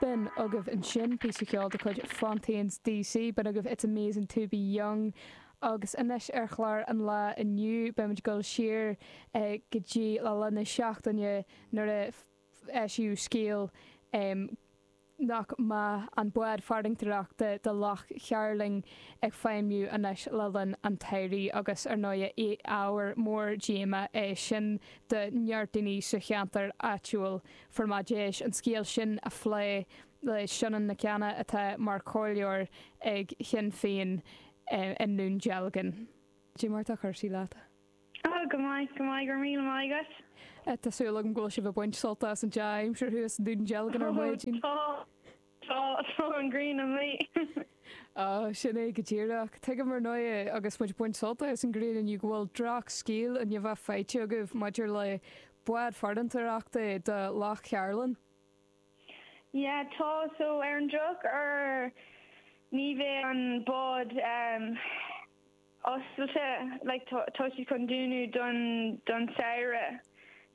B'in agaibh ansin píosa ceoil de chuid Fontaines D.C. B'in agaibh It's Amazing to be Young agus anois ar chlár an lae inniu beimid ag dul siar go dtí le linn na seachtaine nuair a eisíodh scéal nach mbeadh an bád farantóireachta do Loch Chairlinn ag feidhmiú anois le linn an tsamhraidh agus ar ndóigh ábhar mór díoma é sin do neart daoine sa cheantar áitiúil fuair muid deis an scéal sin a phlé le Sionainn Nic Cana atá mar chomhairleoir ag Sinn Féin i nDún Dealgan. Cad é mar atá cúrsaí leat? Oh go maith go maith go raibh míle maith agat. Tá súil agam go bhfuil sibh ag baint sult as an dea-aimsir thuas i nDún Dealgan ar maidin. Oh tá. Tá, tá an ghrian amuigh. Á, sin é go díreach. Tuigim, ar ndóigh, agus muid ag baint sult as an ghrian inniu, go bhfuil drochscéal i ndiaidh a bheith faighte agaibh maidir le bád farantóireachta do Loch Chairlinn. Yeah, tá, so, ar an drochuair ní bheidh an bád oscailte, like, tá, tá siad chun dúnadh don, don samhradh,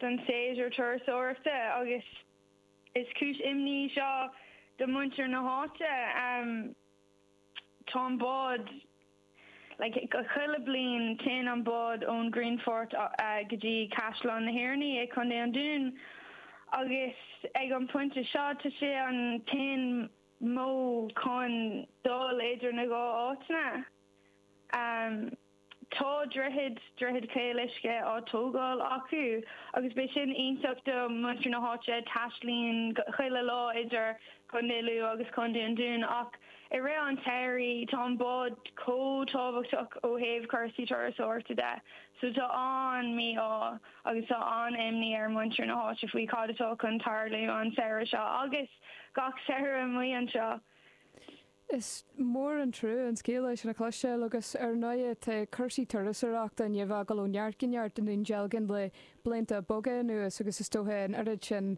don séasúr turasóireachta agus. Is cúis imní í seo do mhuintir na háite. Tá an bád, like, chuile bliain téann an bád ón Grianfort go dtí Caisleán na hOireanaí i gContae an Dúin agus ag an pointe seo tá sé an t-aon modh chun dul idir na dhá áiteanna. Tá droichead, Droichead Chaol Uisce, á tógáil acu agus beidh sin iontach do mhuintir na háite, taistealaíonn chuile lá idir Contae Lú agus Contae an Dúin, ach i rith an tsamhraidh tá an bád chomh tábhachtach ó thaobh cúrsaí turasóireachta de so tá an-mí-ádh agus tá an-imní ar mhuintir na háite faoi cad atá chun tarlú an samhradh seo agus gach samhradh amuigh anseo. Is mór an trua an scéal é sin a chloisteáil agus ar ndóigh tá cúrsaí turasóireachta i ndiaidh a bheith ag dul ó neart go neart i nDún Dealgan le blianta beaga anuas agus is dócha an oiread sin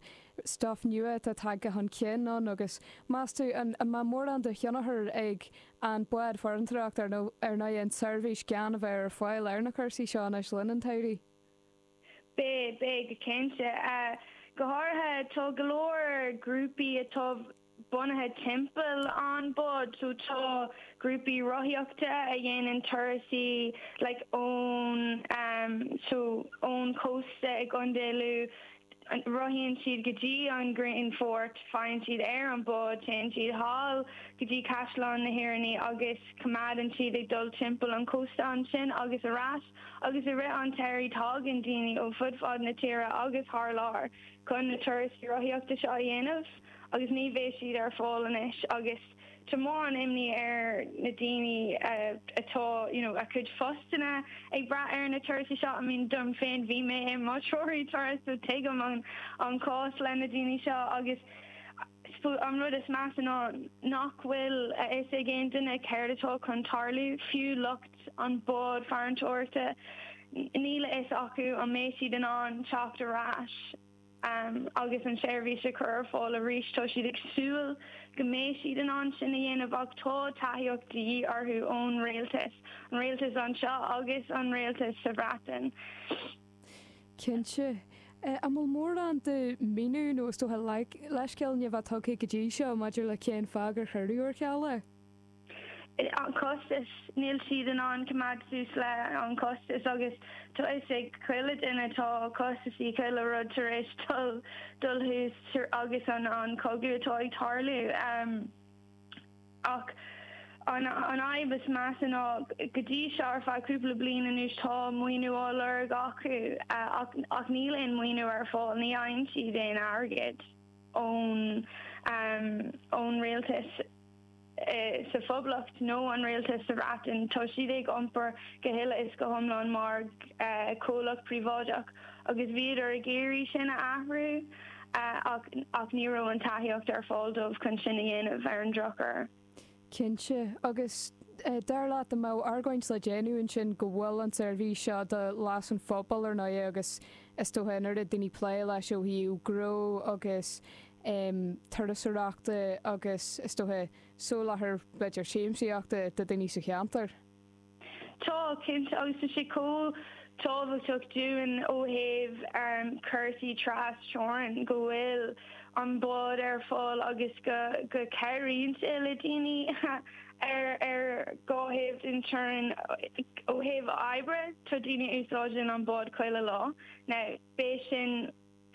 stuif nua atá tagtha chun cinn ann agus meas tú an mbeadh mórán de thionchar ag an bád farantóireachta ar ndóigh an tseirbhís gan a bheith ar fáil ar na cúrsaí seo anois le linn an tsamhraidh. Beidh, beidh go cinnte. Go háirithe tá go leor grúpaí atá bunaithe timpeall an bád, so tá grúpaí rothaíochta a dhéanann turasaí like ón ehm so ón chósta i gContae Lú, rothaíonn siad go dtí an Grianfort, faigheann siad ar an bád, téann siad sall go dtí Caisleán na hOireanaí agus coimeádann siad ag dul timpeall an chósta ansin agus ar ais. agus i rith an tsamhraidh tágann daoine ó fud fad na tíre agus thar lear chun na turais rothaíochta seo a dhéanamh agus ní bheidh siad ar fáil anois agus tá mórán imní ar na daoine atá you know a gcuid postanna ag brath ar na turasaí seo I mean dom féin bhí mé i mo threoraí turas so tuigim an cás le na daoine seo agus An rud is measa ná nach bhfuil a fhios ag aon duine céard atá chun tarlú, fiú lucht an bhád farantóireachta, níl a fhios acu an mbeidh siad in ann teacht ar ais agus an tseirbhís a chur ar fáil arís. Tá siad ag súil go mbeidh siad in ann sin a dhéanamh ach tá tacaíocht de dhíth orthu ón Rialtas, an Rialtas anseo agus an Rialtas sa Bhreatain. Cinnte. An bhfuil mórán de mhíniú nó is dócha leithscéal á tugtha go dtí seo maidir le cén fáth gur cuireadh ar ceal é? An costas. Níl siad in ann coimeád suas le an costas agus tá fhios ag chuile dhuine tá costasaí chuile rud tar éis dul dul suas agus an an cogadh atá ag tarlú. Ach an fhadhb is measa ná, go dtí seo, ar feadh cúpla bliain anuas, tá maoiniú á lorg acu ach níl aon mhaoiniú ar fáil, ní fhaigheann siad aon airgead ón rialtas sa Phoblacht nó an rialtas sa Bhreatain. Tá siad ag iompar go huile is go hiomlán mar chomhlacht príobháideach. agus bhíodar ag iarraidh sin a athrú ach ní raibh an tacaíocht ar fáil dóibh chun sin a dhéanamh, ar an drochuair. Cinnte. Agus dar leat, an mbeadh argóint le déanamh ansin go bhfuil an tseirbhís seo do leas an phobail ar ndóigh agus is dócha an oiread daoine ag plé leis ó thaobh gnó agus turasóireachta agus is dócha soláthar b'fhéidir siamsaíochta do dhaoine sa cheantar? Tá, cinnte, agus tá sé chomh tábhachtach dúinn ó thaobh cúrsaí tras-teorann go bhfuil an bád ar fáil agus go gcabhraíonn sé le daoine ar dhá thaobh den teorainn ó thaobh oibre. Tá daoine a úsáideann an bád chuile lá. Now, beidh sin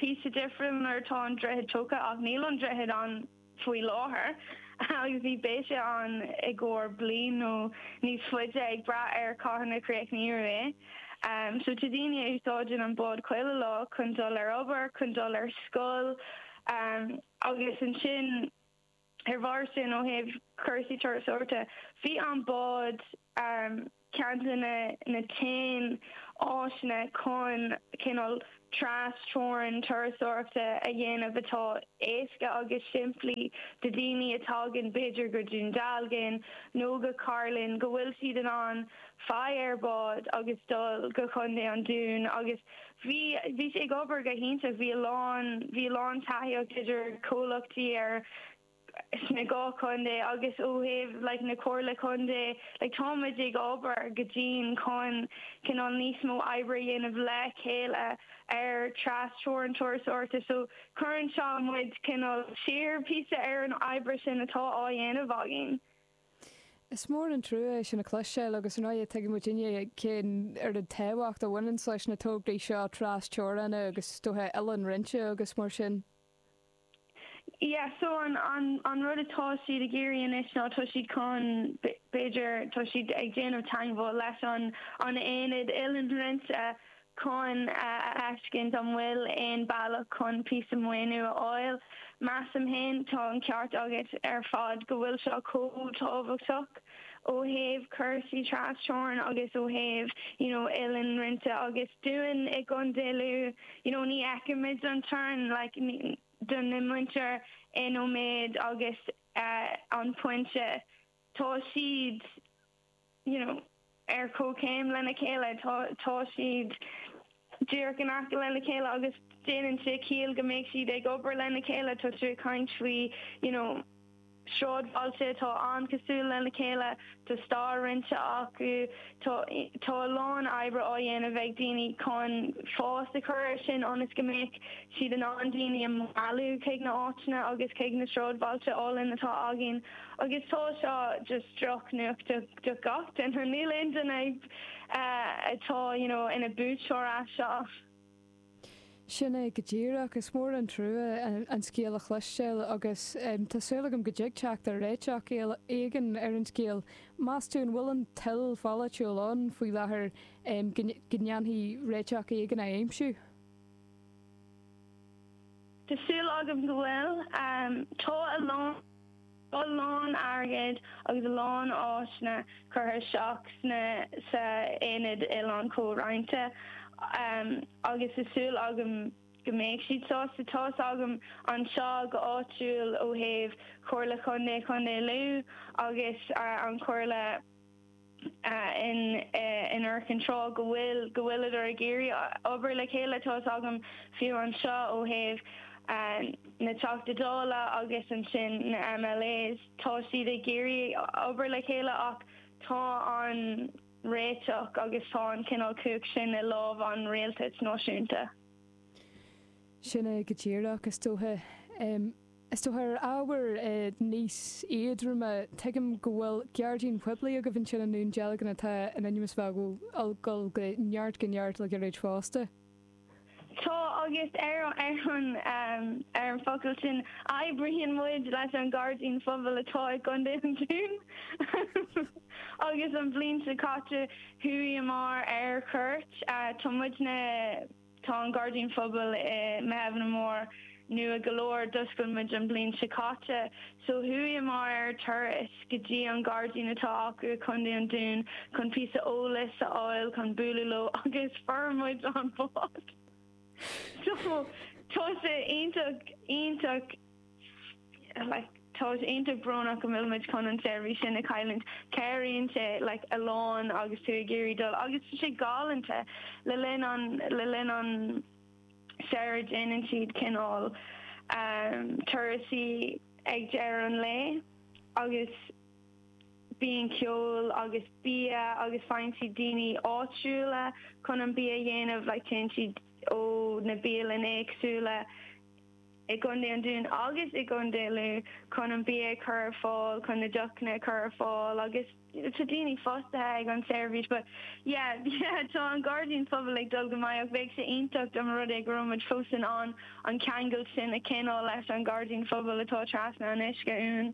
píosa difriúla nuair atá an droichead tógtha ach níl an droichead ann. faoi láthair agus ní bheidh sé ann i gcomhair bliain nó níos faide, ag brath ar cathain a chríochnófar é. So tá daoine a úsáideann an bád chuile lá chun dul ag obair, chun dul ar scoil agus ansin ar bharr sin ó thaobh cúrsaí turasóireachta bhí an bád. ceann de na haon áiseanna chun cineál tras-teorainn turasóireachta a dhéanamh atá éasca agus simplí do daoine a thagann, b'fhéidir, go Dún Dealgan nó go Cairlinn, go bhfuil siad in ann faigh ar bhád agus dul go Contae an Dúin agus bhí bhí sé ag obair go hiontach, bhí a lán bhí a lán taithíocht idir comhlachtaí ar. sna dhá chontae agus ó thaobh like na Comhairle Contae like táimid ag obair go dian chun cineál níos mó oibre a dhéanamh le chéile ar tras-teorainn turasóireachta so cuireann seo muid cineál siar píosa ar an oibre sin atá á dhéanamh againn. Is mór an trua é sin a chloisteáil agus ar ndóigh tuigeann muid uilig cén oiread tábhacht a bhaineanns leis na tograí seo tras-teorainn agus is dócha oileán roinnte agus mar sin. Yeah, so an, an, an rud atá siad ag iarraidh anois ná tá siad chun, b'fhéidir, tá siad ag déanamh teagmháil leis an, an aonad oileán roinnte chun a fheiscint an bhfuil aon bealach chun píosa maoiniú a fháil. Measaim fhéin, tá an ceart agat ar fad go bhfuil seo chomh tábhachtach. ó thaobh cúrsaí tras-teorann agus ó thaobh you know oileán roinnte agus dúinn i gContae Lú you know ní fheicimid an teorainn like don mhuintir in Ó Méith agus uh, An Pointe tá siad you know. ar comhchéim lena chéile. Tá siad díreach in aice lena chéile agus déanann sé ciall go mbeadh siad ag obair lena chéile. Tá siad ag caint faoi you know sráidbhailte atá an-chosúil lena chéile, tá stair roinnte acu, tá tá a lán oibre á dhéanamh ag daoine chun fás a chur ar sin ionas go mbeadh siad in ann daoine a mhealladh chuig na áiteanna agus chuig na sráidbhailte álainn atá againn agus tá seo just drochnuacht do do gach duine. Níl aon duine atá you know ina buaiteoir as seo. Sin é go díreach. Is mór an trua an scéal a chloisteáil agus tá súil agam go dtig a theacht ar réiteach éigin ar an scéal. Meas tú an bhfuil an toil pholaitiúil ann faoi láthair go ndéanfaí réiteach éigin a aimsiú? Tá súil agam go bhfuil. Tá a lán. Tá a lán airgid agus a lán áiseanna curtha isteach sna sa Aonad Oileán Comhroinnte agus tá súil agam go mbeidh siad sásta. Tá's agam anseo go áitiúil ó thaobh Chomhairle Chontae Chontae Lú agus an Chomhairle, in Arkan, tá go bhfuil go bhfuileadar ag iarraidh obair le chéile tá a fhios agam fiú anseo ó thaobh na Teachta Dála agus ansin na MLAs, tá siad ag iarraidh obair le chéile ach tá an réiteach agus tá an cineál cumhacht sin i lámh an rialtais náisiúnta. Sin é go díreach is dócha. Is dócha ar ábhair níos éadroime, tuigim go bhfuil gairdín poiblí agaibh ansin i nDún Dealgan atá in ainm is a bheith ag dul ó neart go neart le gairid fosta. Tá, agus ar an ar an fhocal sin oibríonn muid leis an gairdín phobail atá i gContae an Dúin agus an bhliain seo caite chuaigheamar ar chuairt, tá muidne. Tá an gairdín phobail i Muirtheimhne mór, nua go leor. D'oscail muid an bhliain seo caite so chuaigheamar ar turas go dtí an gairdín atá acu i gContae an Dúin chun píosa eolais a fháil chun bualadh leo agus fuair muid an bád so tá sé iontach, iontach. Tá sé iontach brónach go bhfuil muid chun an seirbhís sin a chailliúint. Cabhraíonn sé like a lán agus tú ag iarraidh dul agus tá sé galánta le linn an le linn an samhraidh déanann siad cineál turais ag deireadh an lae agus bíonn ceol agus bia agus faigheann siad daoine áitiúla chun an bia a dhéanamh like téann siad ó na bialanna éagsúla i gContae an Dúin agus i gContae Lú chun an bia a chur ar fáil, chun na deochanna a chur ar fáil agus tá daoine fostaithe ag an tseirbhís but yeah yeah tá an gairdín pobail ag dul go maith ach bheadh sé iontach dá mba rud é go raibh muid fós in ann an ceangal sin a choinneáil leis an gairdín phobail atá trasna an uisce uainn.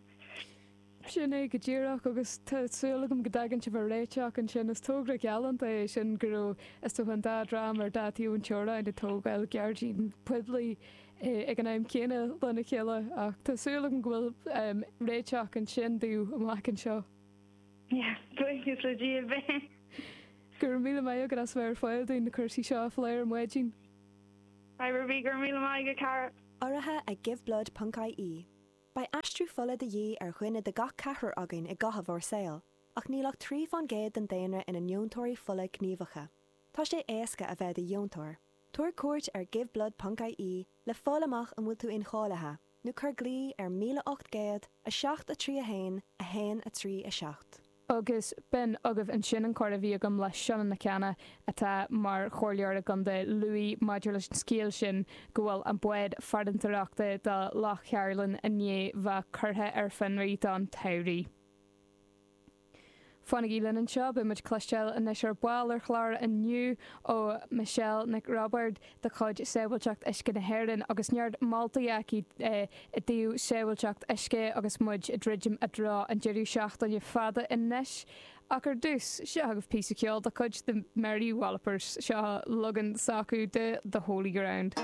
Sin é go díreach, agus tá súil agam go dtagann sibh ar réiteach ansin. Is togra galánta é sin go raibh, is dócha, an dá dhream ar dhá thaobh na teorann ag tógáil gairdín poiblí ag an am céanna lena chéile, ach tá súil agam go bhfuil réiteach ansin daoibh amach anseo. Le cúnamh Dé beidh. Go raibh míle maith agat as a bheith ar fáil dúinn na cúrsaí seo a phlé ar maidin. Go raibh míle maith agat, a chara. Urraithe ag Giveblood ponc-IE. Beidh aistriú fola de dhíth ar dhuine de gach ceathrar againn i gcaitheamh ár saoil, ach níl ach trí fán gcéad den daonra ina ndeontóirí fola gníomhacha. Tá sé éasca a bheith i do dheontóir. Tabhair cuairt ar giveblood ponc IE le fáil amach an bhfuil tú incháilithe, nó cuir glao ar 1800 7 3 1 1 3 7. Agus b'in agaibh ansin an comhrá a bhí agam le Seán Mac Anna, atá mar chomhairleoir i gContae Lú, maidir leis an scéal sin go bhfuil an bád farantóireachta do Loch Cairlinn i ndiaidh bheith curtha ar fionraí don tsamhradh. Fanaigí linn anseo, beidh muid ag cloisteáil anois ar ball ar chlár inniu ó Michelle Nic Roibeaird, de chuid Sábháilteacht Uisce na hÉireann agus neart moltaí aici i dtaobh sábháilteacht uisce agus muid ag druidim i dtreo an deireadh seachtaine fada anois ach ar dtús, seo agaibh píosa ceoil de chuid The Mary Wallopers, seo an leagan s'acu de The Holy Ground.